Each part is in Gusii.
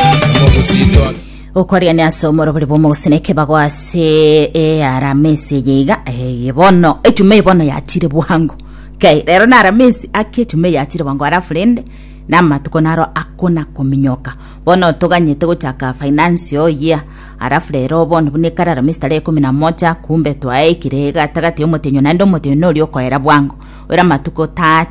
omogusitwa okoriania ase omorobori bw'omogusina ekebago ase earamesi eye iga eye bono echuma eye bono yachire bwango kai rero na aramesi ake echuma eye yachire bwango arafu rende na amatuko naro akona kominyoka bono toganyete gochaka financial year arafu rero bono buna ekare aramesi tarehe ikomi na moja kumbe twaeikire gatagati ya omotenyo naende omotenyo noria okoera bwango oera amatuko 30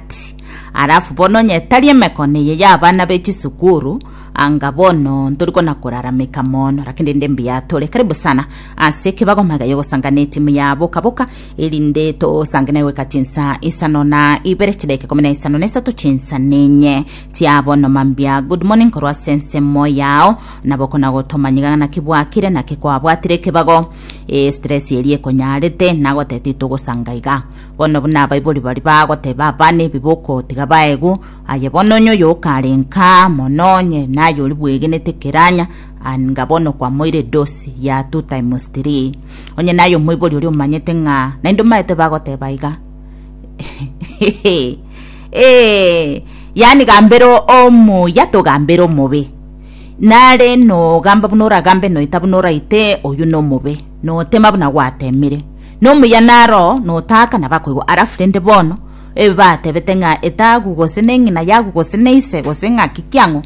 arafu bono onye tari emekono eye ya abana be chisukuru Anga bono ntori kona korarameka mono, lakini rinde mbuya tore. Karibu sana ase ekebago magaiyo ogosanga na etimu ya boka boka, erinde tosange naye goika chinsa isano na ibere chidakika ikomi na isano na isato chinsa nenye chia bono. Mambia good morning korwa ase ensemo yao, nabo kona gotomanya iga naki bwakire naki kwabwatire ekebago. Eh, stress eria ekonyarete nagotebete itogosanga iga bono buna abaibori bari bagoteba abana ebi bokotiga baegu Aye bono onye oyokarenka mono onye naye ori bwegenete keranya, anga bono kwamoire dosi ya two times three. Onye naye omoibori oria omanyete ng'a naende omaete bagoteba iga. Eh, yani gambera omuya togambera omobe. Nare nogamba buna oragambe noita buna oraite oyu nomobe. Notema buna gwatemire. Nomuya naro notaka nabakoigwa arafu rende bono Ebe batebete ng'a etaagu gose neng'ina yagu gose neise gose ng'aki kiang'o.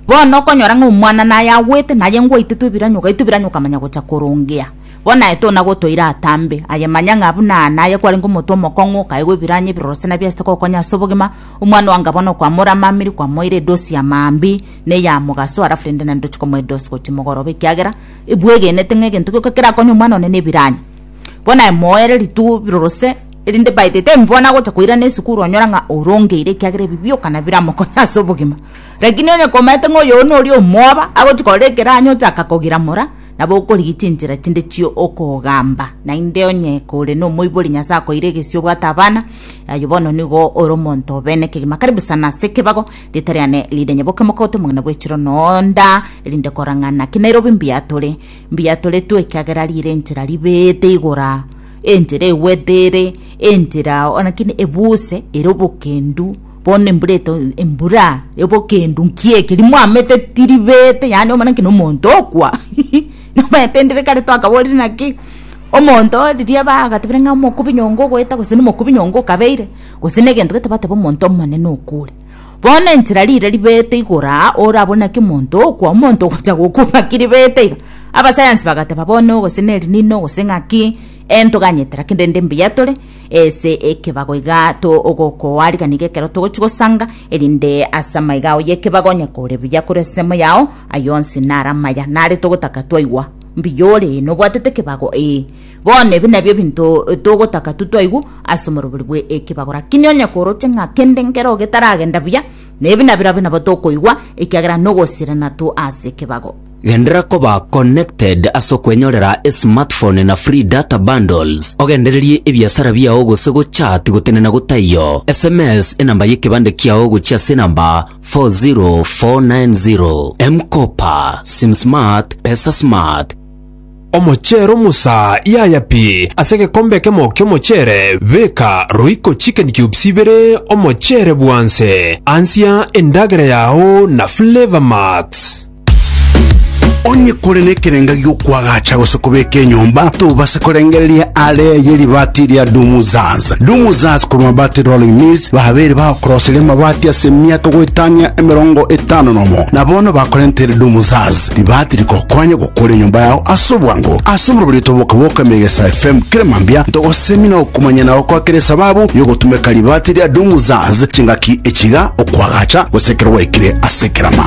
Bono okonyora ng'a omwana naye agwete naye ngwaitetwe ebiranyo ogaitwa ebiranyo okamanya gocha korongea. Bono aye tona gotoira atambe aye manya ng'a buna aa naye kwarenge omonto omokong'u okaigwa ebiranyo ebiroro se nabiasete gokonya ase obogima. Omwana oanga bono kwamoramamiri kwamoira edosi ya maambia ne ya mogaso alafu rende naende ndoche komoa edosi gochia mogoroba ekiagera ebwegenete ng'a egento gioka kerakonye omwana one nebiranyo. Bono aye moere ritugo biroro se. Erinde baete tembwana gocha koirana esukuru onyora ng'a orongeire ekiagera ebi bioka nabiramokonye ase obogima. Rakini onye komaete ng'a oyo nori omwoba, agochi korora ekeranyo ochaka kogira mora, nabo okorigia chinchera chinde chio okogamba. Naende onye kore nomoibori Nyasae akoeire egesio obwate abana, aye bono nigo ore omonto obe nekegima. Karibu sana ase ekebago, rieta riane Lydia Nyaboke mokagote omong'ina bwechiro nonda, erinde korang'ana ki Nairobi mbiatore, mbiatoretwe ekiagera rire enchera ribeete igora. Enchera egwete ere enchera oo, lakini ebuse ere obokendu, bono embura eto embura y'obokendu nki eke rimo amete tiribete yaani omana nki nomonto okwa nobaete ndire kare twakaborire naki omonto oo riria bagatebire ng'a omokubi nyongo ogoeta gose na omokubi nyongo okabeire gose na egento gete bateba omonto omonene okwo ore. Bono enchera riire ribeete igoro aa ore abwo naki omonto okwa omonto ogocha gokwa ng'aki ribeete iga? Abasayansi bagateba bono gose nerinino gose ng'aki entoganyete lakini rende mbuya tore ase ekebago iga to ogokoa riga nigo ekero togochi gosanga erinde ase amaiga ao y'ekebago onye kore buya kore ase ensemo yao ayio onsi nare amaya nare togotaka twaigwa mbuya ore nobwatete ekebago ee. Bono ebi nabio ebinto togotaka tu twaigwa ase omorobori bwe ekebago. Rakini onye koroche ng'a kende nkero getaragenda buya, nebi nabirobio nabo tokoigwa, ekiagera nogosirana tu ase ekebago. Genderera koba connected ase okwenyorera esmartphone na free data bundles, ogendererie ebiasara biao gose gochat gotenena gotaiyo. Sms enamba y'ekebande kiao gochia ase enamba 40490. M-Kopa, SimSmart, PesaSmart. Omochero Musa yaya pi ase egekombe ekemo ki'omochere, beka roiko chicken cubes ibere omochere bwanse. Ansia endagera yao na Flavour Max. Onye kore nekerenga gi'okwagacha gose kobeka enyomba, tobase korengereria are ye ribaati ria Dumuzaz. Dumuzaz korwa Mabati Rolling Mills babeire bagokoroseria amabati ase emiaka goetania emerongo etano nomo, na bono bakorentere Dumuzaz, ribaati rigokonya Kore enyomba yao ase obwango. Ase omorobori oito boka bwoka Megesa FM kera mambia ntogosemina okomanya na gokoa kera esababu yogotumeka ribaati ria Doom Zaz chingaki echiga okoagacha gose ekero gwaikire ase ekerama.